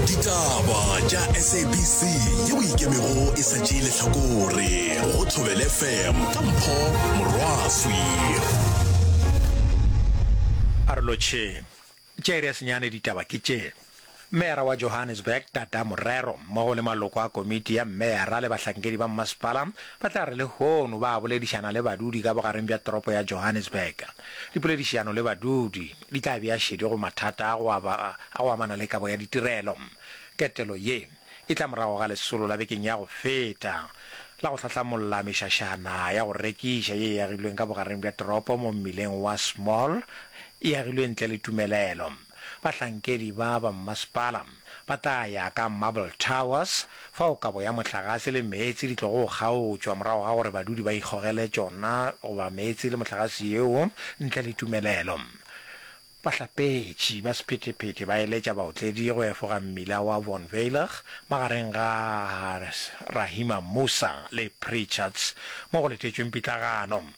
ditaba tša sabc ye o ikemego e sa tšee lehlakore go thobele fm ka mpho morwaswi a re lotšhe tšere ya senyane ditaba ke tše Meyara wa Johannesburg Tata Morero mmogo le maloko a komiti ya meyara le bahlankedi ba mmasepala ba tla re lehono ba boledišana le badudi ka bogareng bja toropo ya Johannesburg. Dipoledišiano le badudi. di tla bea šedi go mathata a go aba a go amana le kabo ya ditirelo. Ketelo ye e tla morago ga lesolo la bekeng ya go feta la go hlahlamolla mešašana ya go rekiša ye e agilweng ka bogareng bja toropo mo mmileng wa Small, e agilwe ntle le tumelelo. Bahlankedi ba ba mmasepala. Ba tla ya ka Marble Towers, fao kabo ya mohlagase le meetse di tlogo kgaotšwa morago ga gore badudi ba ikgogele tšona goba meetse le mohlagase yeo ntle le tumelelo. Bahlapetši ba sephethephethe ba eletša baotledi go efoga mmila wa Von Veilig magareng ga Rahima Moosa le Preacherts mo go letetšweng pitlagano.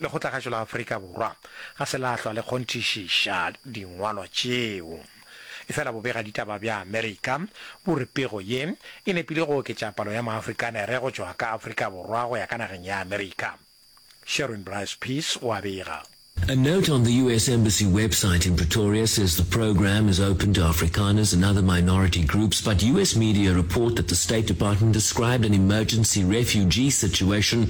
Lekgotlagašo la Afrika Borwa ga se la hlwa le kgonthišiša dingwalwa tšeo. Efela bobegaditaba bja Amerika bo re pego ye e nepile go oketša palo ya Maafrikanere go tšwa ka Afrika Borwa go ya ka nageng ya Amerika. Sharon Bryce Pease o a bega. A note on the US Embassy website in Pretoria says the program is open to Afrikaners and other minority groups, but US media report that the State Department described an emergency refugee situation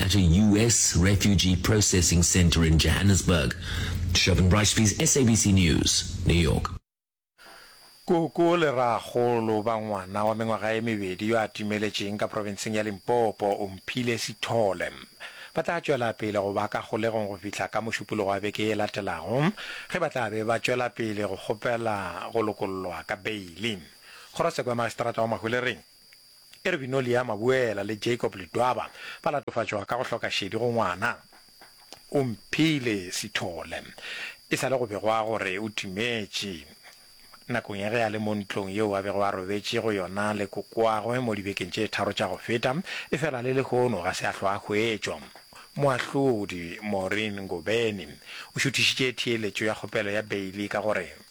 at a US refugee processing centre in Johannesburg. Shobin Brashbies, SABC News, New York. Koko le rraagolo ba ngwana wa mengwaga e mebedi yo a timeletšeng ka profenseng ya Limpopo, Omphile Sithole, ba tla tšwela pele go ba ka kgolegong go fihla ka Mošupologo wa beke ye latelago ge ba tla be ba tšwela pele go kgopela go lokollwa ka beili. Kgorosekwe ya Magistrata wa Mahwelereng, Ervinolia Mabuela le Jacob Ledwaba ba latofatšwa ka go hloka šedi go ngwana. Omphile Sithole e sa le go begwa gore o timetše nakong ya ge a le mo ntlong yeo a bego a robetše go yona le kokoagwe mo dibekeng tše tharo tša go feta, efela le lehono ga se a hlwa a hwetšwa. Moahlodi Maureen Ngobeni o šuthišitše theeletšo ya kgopelo ya beili ka gore.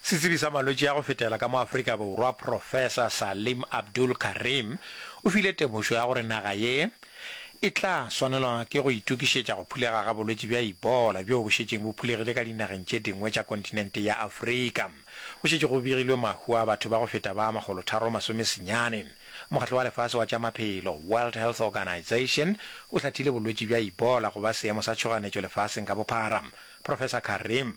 Setsebi sa malwetši a go fetela ka mo Afrika Borwa Professor Salim Abdul Karim o file temošo ya gore naga ye e tla swanelwa ke go itokišetša go phulega ga bolwetši bja Ebola bjoo bo šetšeng bo phulegile ka dinageng tše dingwe tša kontinente ya Afrika. Go šetše go begilwe mahu a batho ba go feta ba makgolotharo masome senyane. Mokgatlo wa Lefase wa tša Maphelo, World Health Organization, o hlathile bolwetši bja Ebola go ba seemo sa tšhoganetšo lefaseng ka bophara. Professor Karim.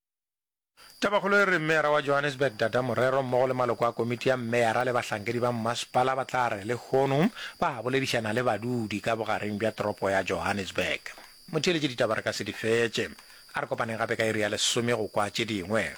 Tabakgolo e re Meyara wa Johannesburg Dada Morero mmogo le maloko a komiti ya Meyara le bahlankedi ba mmasepala ba tla re lehono ba boledišana le badudi ka bogareng bja toropo ya Johannesburg. Motheeletše ditaba re ka se di fetše. A re kopaneng gape ka iri ya lesome go kwa tše dingwe.